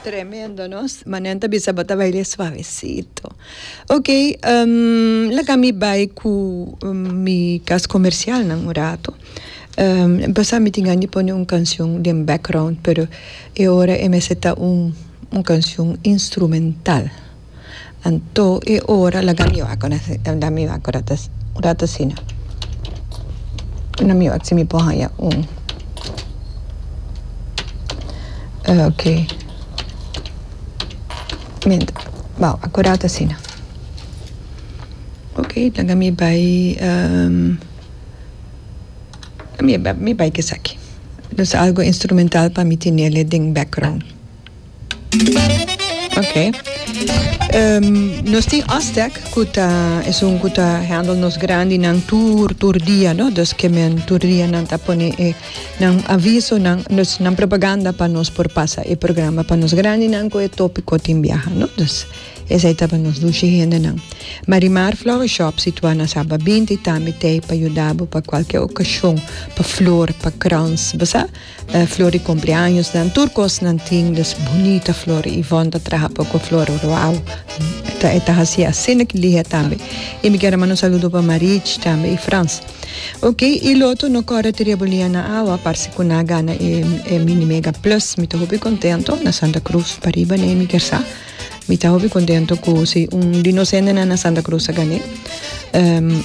Tremendo no ma nen ta bisa bo ta baile suavecito ok um laga mi bai cu mi cas comercial nan un rato um pasa mi tin gana di pone un cancion den background pero e ora e mester ta un cancion instrumental Anto e ora laga mi wak una laga mi wak un rat asina laga mi wak si mi por haya un ok menta ba wak un rat asina ok laga mi bay mi bay kesaki los algo instrumental pa mi tenele den background. Ok. Um, nos tin Aztec, cu ta, es un cu ta handle nos grandi nan tur, tur dia, no? Dus que men tur dia nan ta pone e, nan aviso, nan, nos, nan propaganda pa nos por pasa e programa pa nos grandi nan cu e tópico tin biaha, no? Dus, es ai taba nos dushi hende nan. Marimar Flower Shop situa na Saba 20 tambi tei pa yudabo pa cualkier ocasion, pa flor, pa crowns, basa? Flor di kompleañosnan, tur kosnan tin des bunita flor. Ivon ta traha pa ku flor ruau, e ta hasi asina ki dia tambe. I mi kier a manda un saludo pa Marich tambe i Frans. Ok, i loto no kòrda te rebulia na awa, parse ku nan a gana e Mini Mega Plus. Mi ta hopi kontento, na Santa Krus pariba n'e mi kier sa. Mi ta hopi kontento ku si un di nos hendenan na Santa Krus a gan'é.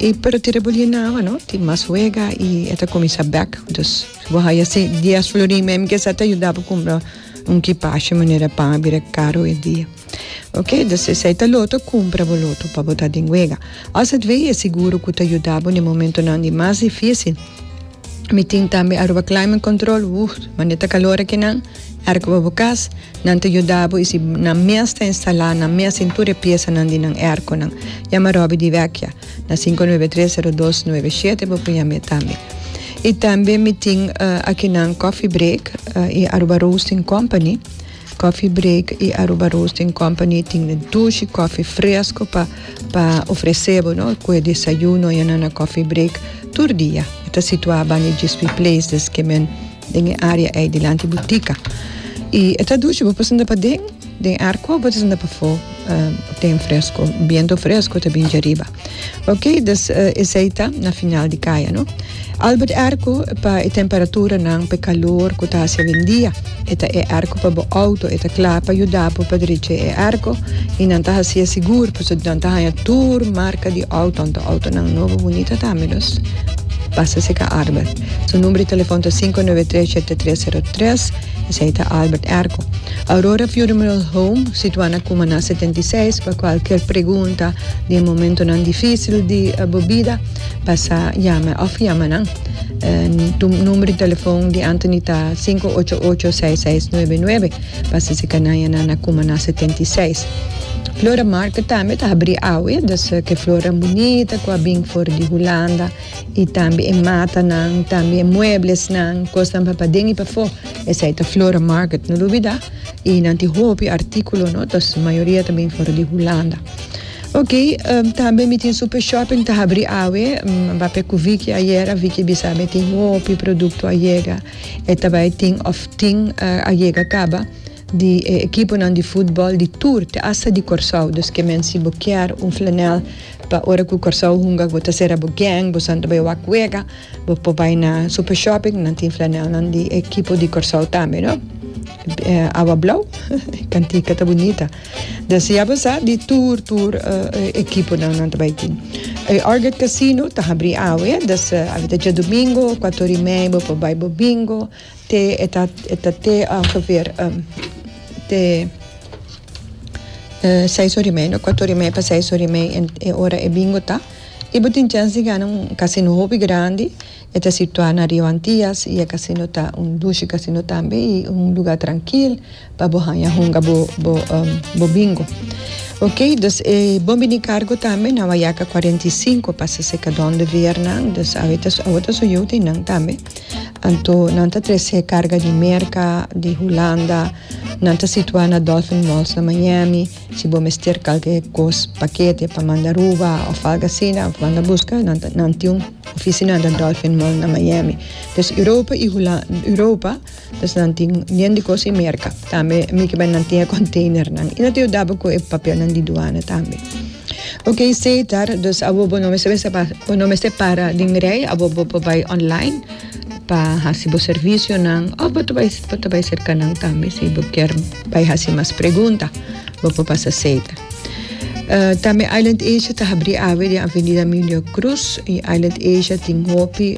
I pero te rebulia na awa no, tin mas wega i e ta kuminsá bèk. Dus. Bo haya si dies florin me mi kesa ta yuda bo kumbra un kipashe manera pan a bira karo e dia oke dus esa e ta loto kumpra bo loto pa bo ta den wega aswei e seguro ku ta yuda bo den momentonan di mas difisil mi tin tambe Aruba climate control wuuh mane ta kalor aki nan erko pa bo kas nan ta yuda bo i si nan mes ta instala nan mes tin tur e piesa nan di nan erkonan yama Robby di Vecchia. Na sinku nuebe tres sero dos nuebe shete bo por yam'e tambe. I tambe mi tin uh, akinan Coffee Break uh, i Aruba Roasting Company. Coffee Break i Aruba Roasting Company tin e dushi koffie fresco pa, pa ofrece bo, no? Kue desayuno yana na Coffee Break tur dia. E ta situa bani Gispi Place, des ke men den e área ei dilanti bu tika i e ta duchi bo pasobra paden den air ko pasobra pafó ten fresko biento fresko ta binchi ariba oke dus esei ta na final di kaya no albert air ko pa e temperaturanan pa e kalor ku ta hasi awendia e ta e air ko pa bo outo e ta kla pa yuda bo pa derech'é e air ko i nan ta hasié sigur pasobra nan ta haña tur marka di outo outonan nobo bunita tambe los pasa seka arbel. Su number di telefon ta sinku nove tres shete tres sero tres. Esei ta Albert Erco. Aurora Funeral Home situá na Cumaná setenta i seis. Pa cualkier pregunta di e momentonan dificil di bo bida pasa yama of yama nan. Tu number di telefon di Anthony ta sinku ocho ocho seis seis nuebe nuebe. Pasa si canaye nan na Cumaná setenta i seis. Flora Market tambe ta habrí awe. Deseá cu e flornan bunita cu a bin for di Hulanda. I tambe e matanan, tambe e mueblesnan, kosnan pa paden i pafó. Esei ta Flora Market, no lo bida. I nan tin hopi artíkulo, no? Ta su mayoria ta bin for di Hulanda. Ok, tambe mi tin Super Shopping ta habri awe. Mi a p'e ku Vicky ayera, Vicky a bisa mi tin hopi produkto a yega. E ta bai tin òf tin a yega kaba. di e ekiponan di futbòl di tur te asta di Kòrsou. Dus ke men si bo kier un flanèl pa ora ku Kòrsou hunga bo ta sera bo gèng, bo san ta bai wak wega, bo por bai na Super Shopping, nan tin flanèlnan di e ekipo di Kòrsou tambe no. Awa blou, e kantika ta bunita. Dus ya bo sa di tur tur e ekiponan nan ta bai tin. E Orgat Casino ta habri awe, dus awe ta Djadumingo, kuatori mei bo por bai bo bingo. Te e ta e ta te ongeveer um te e seis ora y media, cuato ora y media pa seis ora y media en e ora e bingo ta. Y bo tin chance di gana un casino hopi grandi. E ta situa na Rio Antillas y e casino ta un dushi casino tambe y un lugar trankil pa bo hanja hunga bo bo um bo bingo. Ok, dus e bo bini cargo tambe na Wayaca cuarenta y cinco pa sese cadon de veer nan. Dus awe ta su awe ta su yuta y nan tambe. Anto nan ta trese karga di Merka, di Hulanda. Nan ta situá na Dolphin Malls na Miami. Si bo mester kalke kos, pakete pa manda Aruba òf algu asina, manda buska. Nan ta, nan tin un ofisinan na Dolphin Mall na Miami. Pues Europa i Hula, Europa. Pues nan tin bien di cos y merca tambe mi kiba nan tin e containernan y no ta yudabe cu e papelnan di duana tambe ok esey ta dus awor bo no mester mester pa bo no mester para den rey awor bo por bay online pa haci bo servicionan of bo ta bay bo ta bay cerca nan tambe si bo kier bay haci mas pregunta bo por pasa esey ta tambe Island Asia ta habri awe den avenida Emilio Cruz y Island Asia tin hopi.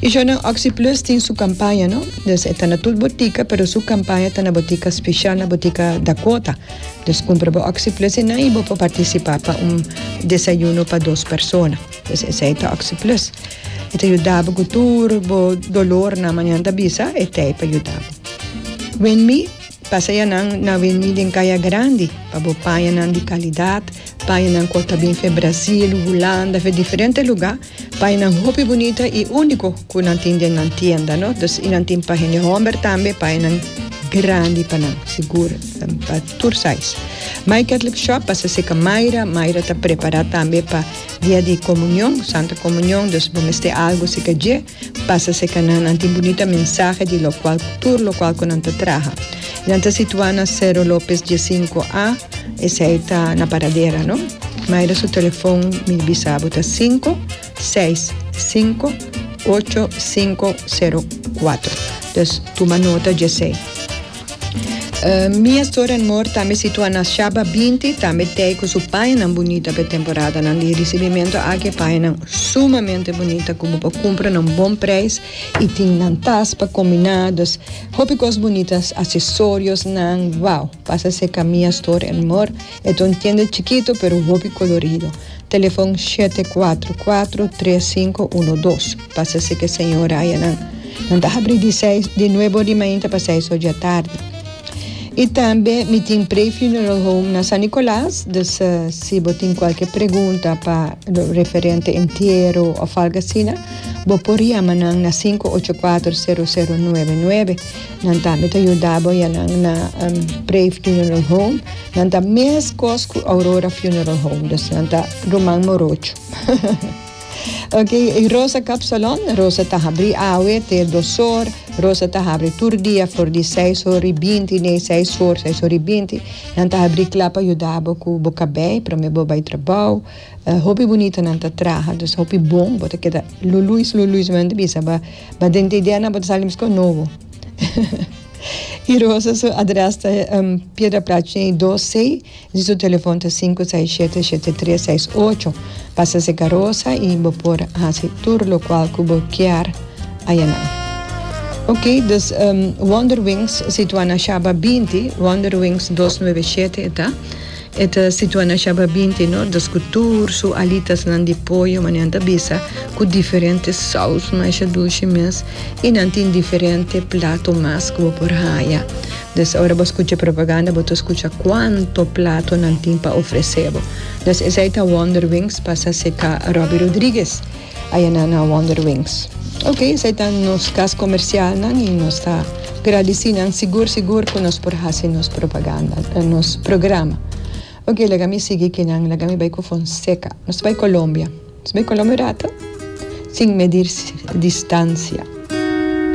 Y sho nan Oxyplus tin su campaña no, dus e ta na tur botica pero su campaña ta na botica special na botica Dakota. Dus cumpra bo Oxyplus enan y bo por participa pa un desayuno pa dos persona. Dus esey ta Oxyplus. E ta yudabo cu tur bo dolor nan manan ta bisa e tey pa yudabo. WinMe, Pasaya nan na WinMe den Caya Grandi pa bo paña nan di calidad, paña nan cu a ta bin fe Brasil, Hulanda, fe diferente lugar. Paainan hopi bunita y unico cu nan tin den nan tienda no dus y nan tin pa hende homber tambe paainan grandi pa nan sigur pa tur size my catholic shop basa si ca myra myra ta prepara tambe pa dia di comunion santa comunion dus bo mester algo si ca dje basa si ca nan nan tin bunita mensahe di locual tur locual cu nan ta traha nan ta situa na cerro lopez dies cinco a. Esei ta na Paradera no. Maida su telefon mi bisa bo ta sinku seis sinku ocho sinku sero kuatro dus tuma nota djesei. Mi a stora en mor tambe situa na Shaba binti tambe tei ku su payanan bunita pa e temporadanan di risibimentu aki e payanan sumamente bunita ku bo por kumpra na un bon preis i tin nan tas pa kombiná dus hopi kos bunita asesoriosnan wao. Pasa se camia store en mor e ta un tienda chikito pero hopi colorido. Telefon shete kuatro kuatro tres sinku uno dos. Pasa se ke señora aya nan. Nan ta habri di seis di nuebe ori mainta pa seis ori atardi. Y tambe mi tin Prey Funeral Home na San Nicolas dus si bo tin cualkier pregunta pa referente entiero of algo asina bo por yama nan na sinku ocho kuatro sero sero nuebe nuebe. Nan tambe ta yuda bo ya nan na Pray Funeral Home. Nan ta meskos ku Aurora Funeral Home. Dus nan ta ruman morocho. Oke, e Rosa Kap Salon, Rosa ta habri awe te dos or, Rosa ta habri tur dia for di seis or i binti nei, seis or, seis or i binti. Nan ta habri kla pa yuda bo ku bo kabei promé bo bai trabou. Hopi bunita nan ta traha, dus hopi bon. Bo ta keda luluis luluis, mi a bisa ba. Ma dente ideanan bo ta sali mescon nobo. Y Rosa su adres ta Piedra Plat Chey dos C y su telefon ta sinku seis shete shete tres seis ocho. Pasa seka Rosa y bo por hasi tur locual cu bo kier ayanan. Ok dus Wonderwings situa na Shaba binti, Wonderwings dos nove shete e ta. E ta situá na Shababinti no, dus ku tur su alitasnan di poyo, ma nan ta bisa ku diferente sous masha dushi mes i nan tin diferente plato mas ku bo por haña. Des ora bo skucha e propaganda bo ta skucha kuantu plato nan tin pa ofresé bo. Des esei ta Wonderwings, pasa seká Robbie Rodriguez. Aye nan a Wonder Wings. Ok, esei ta nos kas komersialnan i nos ta gradisí nan sigur sigur ku nos por hasi nos propaganda, nos programa. Ok, laga mi sigui ki nan, laga mi bai ku Fonseka. Nos ta bai Kolombia. Nos bai Kolombia un ratu sin medir distansia.